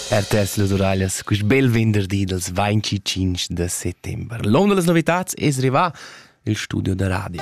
Er tess las uraglias quist bel venderdi dals 25 de settembre. L'onda das novitats es rivà il studio da radio.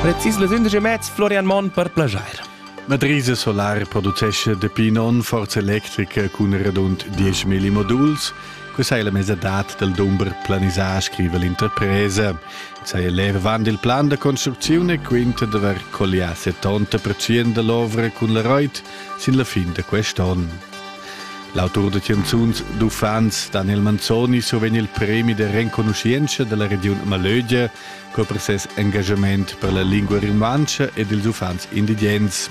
Precis las 11 e mezz Florian Monn per plagiare. La Drise Solar producesce dapi non forza electrica cun radund 10 moduls. Questa è la mezza dat del dumber planisà, scrive l'interpresa. saja l'ervan dil plan da construcziun e quinta d'haver collià 70% dall'ovra cun la Reuth sin la fin da quest onn. L'autur da canzuns d'uffants Daniel Manzoni survegn il premi da renconuschientscha dalla regiun Malögia co per ses engagament per la lingua rumantscha ed ils uffants indigens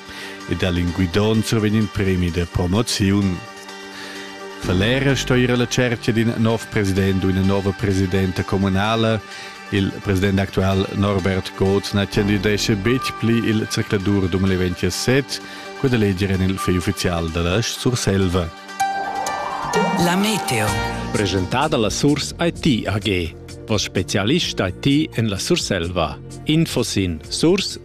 e da Linguidon survegn il premi da promoziun. Falera sto ir alla cerchia d'in nov president u ina nova presidenta communala. Il president actual Norbert Goth na candidesce betg pli il zercladur 2027, quella leger en il fegl uffizial da la Surselva. La meteo. Presentada la Surs IT AG, vos specialist IT en la Surselva. Info sin surs-it.ch.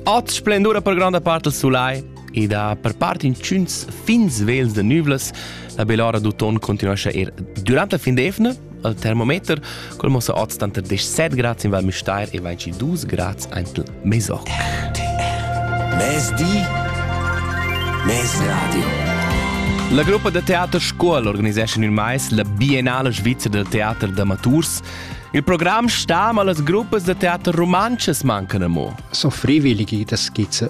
Oz splendura per granda parte il sulai. ed ha per part intschüns fin svels da nüvlas. La bell'ora d'uton continuescha er durante la fin d'evna al termometer, col mossa oz tanter 17 grads in Val Müstair e 22 grads ante Meso. Mezdi, mezradio. La gruppa da teater Scuol organiseschan il mais la Biennale Svizra del Teater d'Amaturs. Il programm sta, ma las gruppas da teater rumantschas mancan amo. So freiwillige, das geht